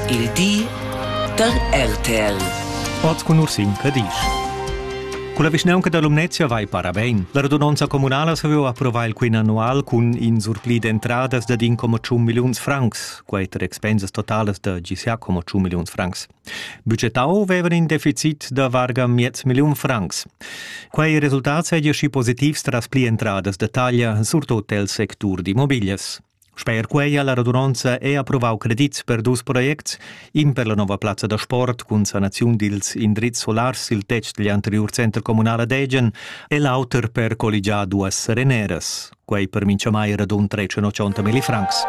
Il di da RTL. Oz cun Ursin Cadisch. Culla vischnaunca dall'Umnezia vai parabein. La radunonza communala saviu approvar il quin annual cun in surpli d'entradas dad in coma tschun milliuns francs, quei ter expensas totalas da GCA coma tschun milliuns francs. Budgetau vevan in deficit da varga miez milliun francs. Quei resultat seigi schi positivs tras pli entradas da taglia surtut el sectur d'immobilias. Sper quei ha la radunonza è approvau credits per dus projects, in per la nova plazza da sport cun sanaziun dils indrizs solars sil tetg digl anteriur center communal ad Egen e l'auter per colligiar duas sereneras. Quei per mintgamai radun 380 millifrancs.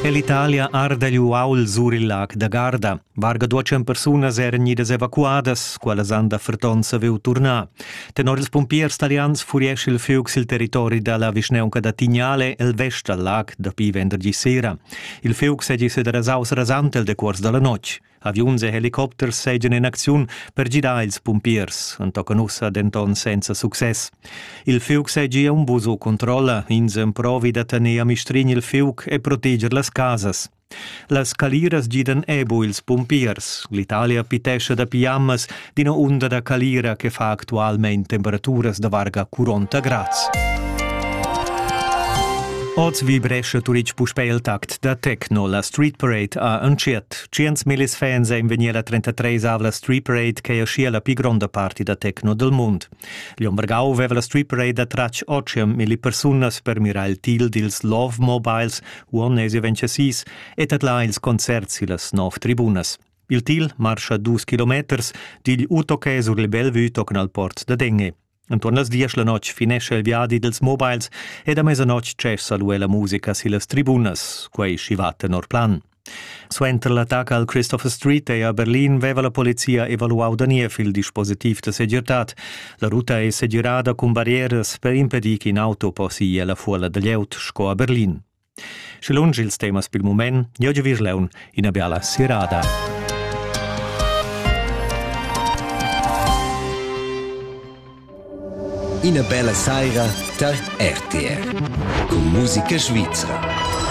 È l'Italia arda gli uaul sur il lac da Garda. Varga duatschen persunas eran idas evacuadas, quellas han da ferton saviu turnar. Tenor ils pompiers talians furiesce il fiug sil territori dalla vischneunca da Tignale el vest dal lag dapi venderdi sera. Il fiug segi sederasaus rasant el decuors dalla notg. Aviuns e helicopters seigien in acziun per gidar ils pompiers, entochen ussa denton senza success. Il fiug seigi un buso controlla, ins emprovi da tener a mistrin il fiug e proteger las casas. Las caliras gidan ebo ils pumpiers. L'Italia pitescha da piammas d'ina unda da calira che fa actualmein temperaturas da varga 40 grads. Oz vibrescha Turic puspè il tact da techno. La Street Parade ha entschiet. Tschient millis fans ein vegnir la 33 avla Street Parade che ha schia la pli gronda parti da techno del mund. Glion Vargau veva la strip parade tratg otschia milli persunas per mirar il til dils Love Mobiles uonnesi vencesis e tadlar ils concerts sillas nov tribunas. Il til marscha dus kilometers digl Utoque sur il Bellevue tocan al port da Denge. Entuorn las diesch la notg finescha il viadi dels mobiles e da mezanotg tschessa lu la musica sillas tribunas, quei schi va tenor plan. Suenter l'attacca al Christopher Street ei a Berlin veva la polizia evaluau da niev il dispositiv da segirtad. La ruta ei segirada cun barrieras per impedir ch'in auto possi ella fuola da glieud sco a Berlin. Sche lunsch ils temas pil mument, jeu giu virleun ina biala sirada. Ina bella saira tar RTR. Con musica svizra.